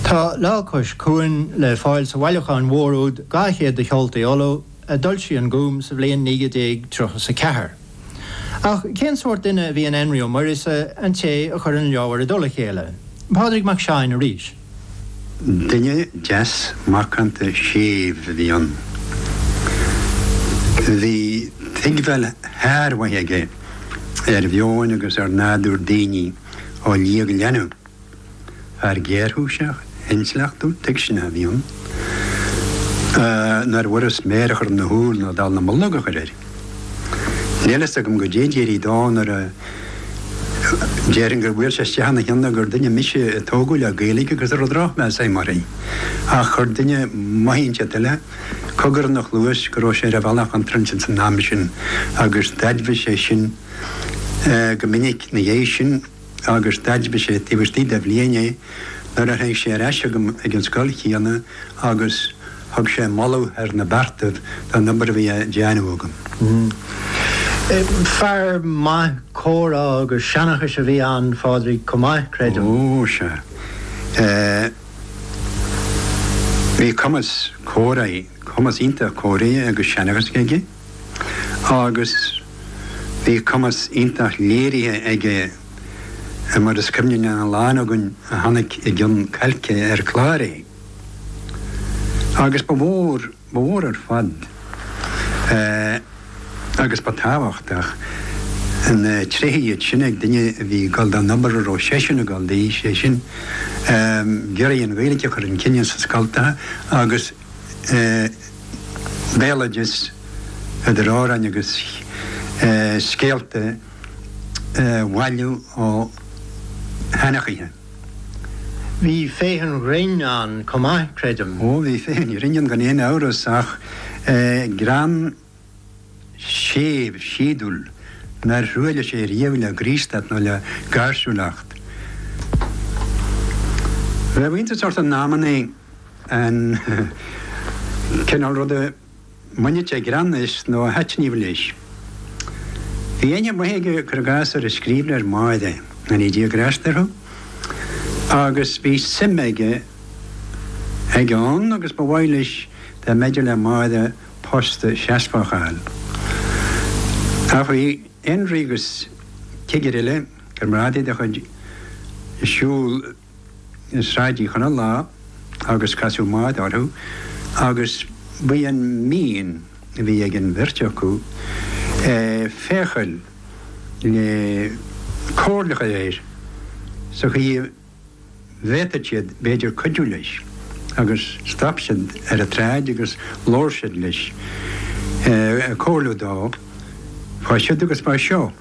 Tá Lá Cois Cuain le fáil sa bhailiúchán mhór úd Dhá Chéad de Cheoltaí Uladh a d'fhoilsigh an Gúm sa bhliain 1934. Ach cén sórt duine a bhí in Énrí Ó Muiríosa, an té a chuir an leabhar i dtoll a chéile? Pádraig Mac Seáin arís. Duine deas macánta séimh a bhí ann. Bhí tuigbheáil shármhaith aige ar mheon agus ar nádúr daoine. á ligeadh lena fear géarchúiseach, intleachtúil, tuigseanach a bhí ann, nárbh fhurast méar a chur ina shúil nó dall na mullóg a chur air. Níl a fhios agam goidé a d'éirigh dó nó déarfainn gur bhuail sé isteach ina cheann gur duine mise a tógadh le Gaeilge agus a raibh drochmheas agam uirthi, ach chuir duine maith inteacht eile cogar ina chluais go raibh sé ar an bhealach chontráilte san am sin agus d'aidmhigh sé sin. go minic ina dhiaidh sin agus d'aidmhigh sé taobh istigh de bhliain é nuair a tháinig sé ar ais chugam ag an scoil chéanna agus thug sé moladh thar na beartaibh don obair a bhí á déanamh agam. Fear maith comhrá agus seanachais a bhí ann, a Phádraig, chomh maith, creidim. Ó, sea. Bhí cumas comhráidh, cumas iontach comhráidh agus seanachais aige. agus bhí cumas iontach léirithe aige, mar is cuimhne lena lán againn a chonaic i gcionn cailce ar chlár é. Agus ba mhór, ba mhór ar fad, agus ba tábhachtach, na tréithe iad sin ag duine a bhí ag dul don obair a raibh seisean ag dul di, sé sin, ag iarraidh an Ghaeilge a chur chun cinn sna scoltacha agus, béaloideas, idir amhráin agus scéalta, a bhailiú ó sheanchaithe. Bhí féith an ghrinn ann chomh maith, creidim. Ó, bhí féith an ghrinn ann gan aon amhras, ach greann. séimh, síodúil, nár thruailligh sé riamh le graostacht nó le gáirsiúlacht. Bheadh iontas ort in amannaí an cineál ruda a mbaineadh sé greann as nó a thaitníodh leis. Bhí aithne mhaith aige, cuir i gcás, ar an scríbhneoir Máire, go ndéana Dia grásta orthu, agus bhí suim aige ann agus ba mhaith leis dá mb'fhéidir le Máire post seasmhach a fháil. Ach bhí Énrí agus cigire eile, comrádaí dá chuid, ag siúl Sráid Uí Chonaill lá agus casadh Máire orthu agus ba í an mhian a bhí ag an bheirt acu féacháil le comhairle a chur air sa chaoi a bhféadfadh siad b'fhéidir cuidiú leis agus stop siad ar an tsráid agus labhair siad leis ag comhairliú dó fá siud agus fá seo.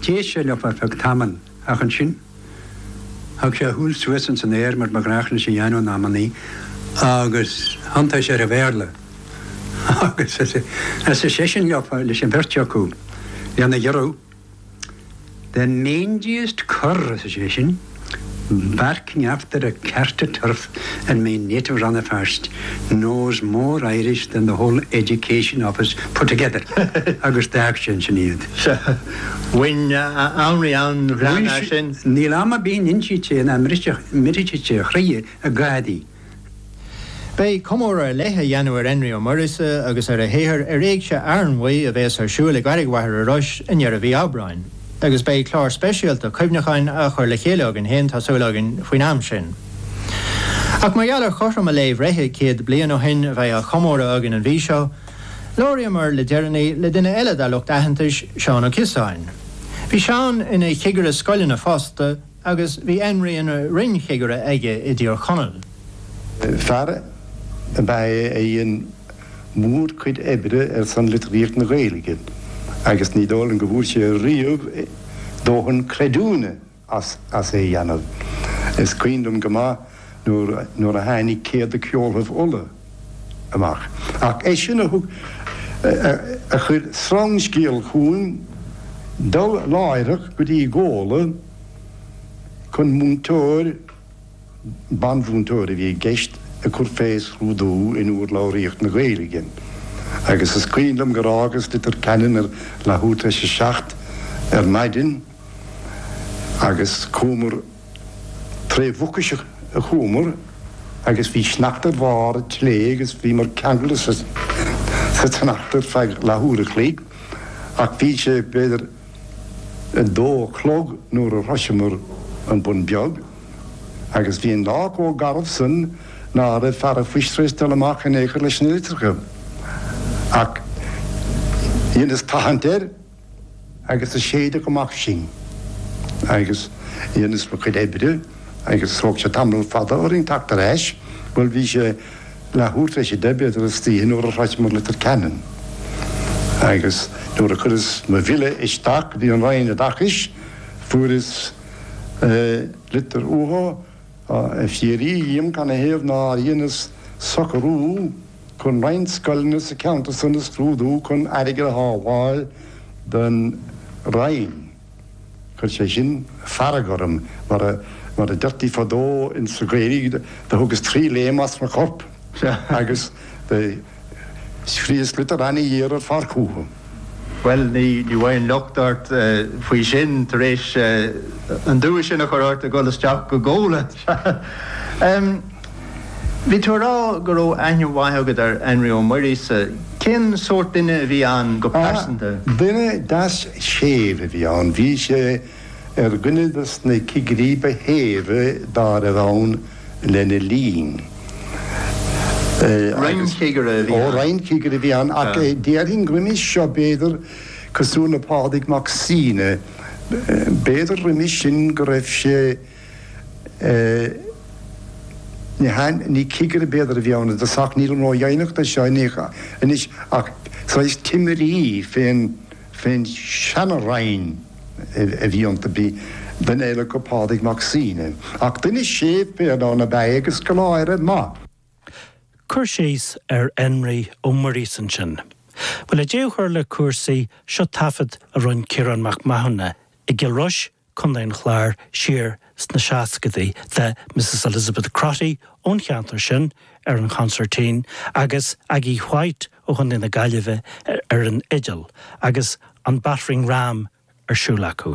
D'éist sé leofa ar feadh tamaill ach ansin thug sé a shúil suas ins an aer mar ba ghnách leis a dhéanamh in amannaí agus thiontaigh sé ar an Bhéarla agus arsa seisean leofa, leis an bheirt acu, lena ghiorrú. The mangiest cur, arsa seisean, barking after a cart of turf in my native Rannafast, knows more Irish than the whole Education Office put together. Agus d'fhág sé ansin iad. Sea. Bhain Henry an-ghreann as sin. Níl am a bhíodh á insint nach mbriseadh, mbriseadh a chroí ag gáirí. Beidh comóradh ar leith á dhéanamh ar Énrí Ó Muirgheasa agus ar a shaothar ar Éigse Fhearnmhaí a bhéas ar siúil i gCarraig Mhachaire Rois i ndeireadh mhí Aibreáin agus beidh clár speisialta cuimhneacháin á chur le chéile againn fhéin tá súil againn faoin am sin. Ach mar gheall ar chothrom a lae bhreithe, 100 bliain ó shin a bheidh á chomóradh againn an mhí seo, labhraíomar le deireanaí le duine eile dá lucht aitheantais, Seán Ó Ciosáin. Bhí Seán ina chigire scoileanna fosta, agus bhí Énrí ina roinn-chigire aige i dTír Chonaill. Fear ab ea é a dhein mórchuid oibre ar son litríocht na Gaeilge agus ní dóigh liom go bhfuair sé riamh dóthain creidiúna as é a dhéanamh. Is cuimhin liom go maith nuair a tháinig Céad de Cheoltaibh Uladh, amach. Ach é sin a thug a chuir sreangscéal chugam dul láithreach go dtí Gola chun múinteoir, banmhúinteoir a bhí i gceist, a chur fé scrúdú in urlabhraíocht na Gaeilge. Agus is cuimhin liom gur fhágas Leitir Ceanainn leathuair tar éis a seacht ar maidin agus chuamar. Tré Mhucais a chuamar agus bhí sneachta ar bharr an tslé' agus bhíomar ceangailte sa tsneachta ar feadh leath-uair a chloig ach bhí sé b'fhéidir a dó a chlog nuair a shroiseamar an Bun Beag agus bhí an lá chomh garbh san ná raibh fear an phoist tréis dul amach in aon chor leis na litreacha. Ach dheineas tathaint air. agus a séideadh amach sinn, agus dheineas mo chuid oibre, agus thóg sé tamall fada orainn teacht ar ais, bhuel, bhí sé leathuair tar éis a deich, b'fhéidir, istoíche, nuair a shroicheamar Leitir Ceanainn, agus nuair a chuireas mo bhille isteach go dtí an Roinn Oideachais, fuaireas litir uathu, ag fiafraí dhíom cad ina thaobh nár dheineas socarú, Chun roinnt scoileanna sa cheantar san a scrúdú chun airgead a shábháil don Roinn, do chuir sé sin fearg orm, mar a deirtí fadó insa Ghaeilg, do thugas trí léim as mo chorp agus do scríos litir ana-ghéar ar fad chúthu. Bhuel, ní bheidh an locht ort faoi sin tar éis an dua sin a chur ort ag dhul isteach go Gola. Bhí tú ag rá go raibh aithne mhaith agat ar Enrí Ó Muirgheasa. Cén sórt duine a bhí ann go pearsanta? Duine deas séimh a bhí ann. Bhí sé ar dhuine des na cigirí ba shéimhe dá raibh ann. lena linn. Roinnchigire a bhí ann. Ó, roinnchigire a bhí ann, ach déarfainn roimis seo, b'fhéidir, cosúil le Pádraig Mac Suibhne, b'fhéidir roimis sin go raibh sé, ní cigire b'fhéidir a bhí ann, agus nílim ró-dheimhneach de seo anois, ach saghas timire fén. Fén seana-roinn a bhí iontu, bhí duine eile acu, Pádraig Mac Suibhne, ach duine séimh béasach ab ea é agus scoláire maith. Cur síos ar Enrí Ó Muirgheasa ansin. Bhuel, le deabhadh a chur le cúrsaí, seo taifead a rinn Ciarán Mac Mathúna i gCill Rois Contae an Chláir, siar sna seascadaí, le Mrs Elizabeth Crotty ón cheantar sin ar an chonsairtín agus Aggie White ó Chontae na Gaillimhe ar an fhidil agus an battering ram ar siúl acu.